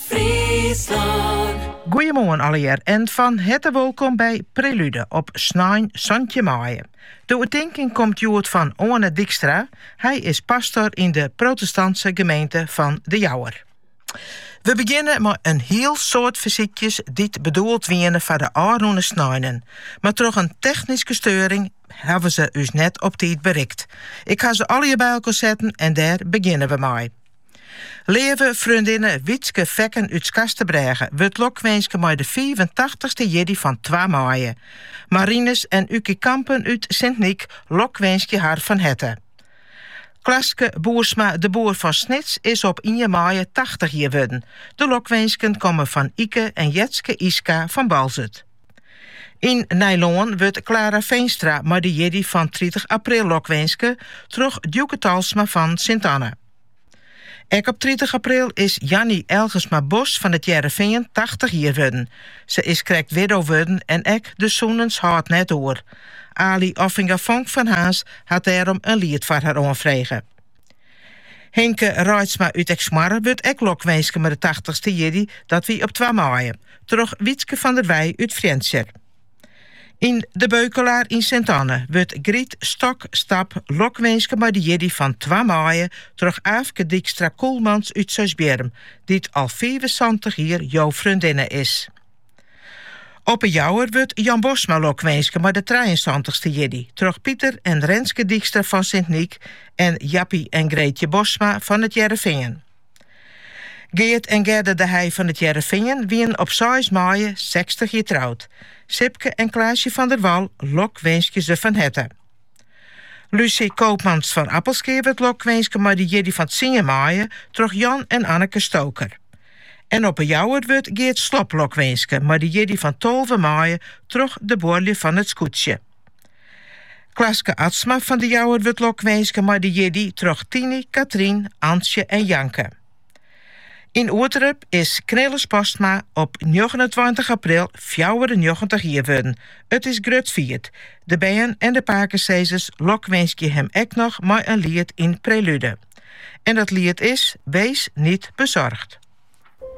Fryslân. Goeiemoarn allegear en fan herte wolkom by Prelude op snein santjin maaie. De oertinking komt hjoed fan Oane Dykstra, hy is pastor yn de protestantse gemeente fan De Jouwer. We begjinne mei in hiel soad fersykjes dy't bedoeld wiene foar de ôfrûne sneinen, mar troch in technyske steuring hawwe se ús net op tiid berikt. Ik ha se allegear by elkoar setten en dêr begjinne we mei. Leave freondinne Wietske Fekken út Skarsterbrêge wurdt lokwinske mei de fiifentachtich-ste jierdei fan twa maaie. Marinus en Ukie Kampen út Sint Nyk lokwinskje har fan herte. Klaske Boersma de Boer fan Snits is op ien maaie tachtich jier wurden. De lokwinsken komme fan Ike en Jetske IJska fan Boalsert. Yn Nijlân wurdt Klara Veenstra mei de jierdei fan tritich april lokwinske troch Djoeke Talsma fan Sint Anne. Ek op tritich april is Janny Elgersma Bos fan It Hearrenfean tachtich jier wurden. Se is krekt widdo wurden en ek de sûnens hâldt net oer. Aly Offinga Vonk fan Harns hat dêrom in liet foar har oanfrege. Hinke Reitsma út Eksmoarre wurdt ek lokwinske mei de tachtichste jierdei, dat wie op twa maaie, troch Wietske van der Wij út Frjentsjer. Yn De Beukelaar yn Sint-Anne wurdt Griet Stok Stap lokwinske mei de jierdei fan twa maaie troch Aafke Dykstra Koelmans út Seisbierrum, dy't al fiifensantich jier jo freondinne is. Op 'e Jouwer wurdt Jan Bosma lokwinske mei de trijeensantich-ste jierdei troch Piter en Renske Dykstra fan Sint Nyk en Jappie en Greetje Bosma fan It Hearrenfean. Geart en Gerda de Heij fan It Hearrenfean wienen op seis maaie sechstich jier troud. Sipke en Klaasje van der Wal lokwinskje se fan herte. Lucy Koopmans fan Appelskea wurdt lokwinske mei de jierdei fan tsien maaie troch Jan en Anneke Stoker. En op 'e Jouwer wurdt Geart Slop lokwinske mei de jierdei fan tolve maaie troch de buorlju fan It Skûtsje. Klaske Atsma fan de Jouwer wurdt lokwinske mei de jierdei troch Tiny, Katrien, Antsje en Janke. Yn Ureterp is Knilles Postma op njoggenentweintich april fjouwerennjoggentich jier wurden. It is grut fierd. De bern en de pakesizers lokwinskje him ek noch mei in liet yn Prelude. En dat liet is Wees niet bezorgd.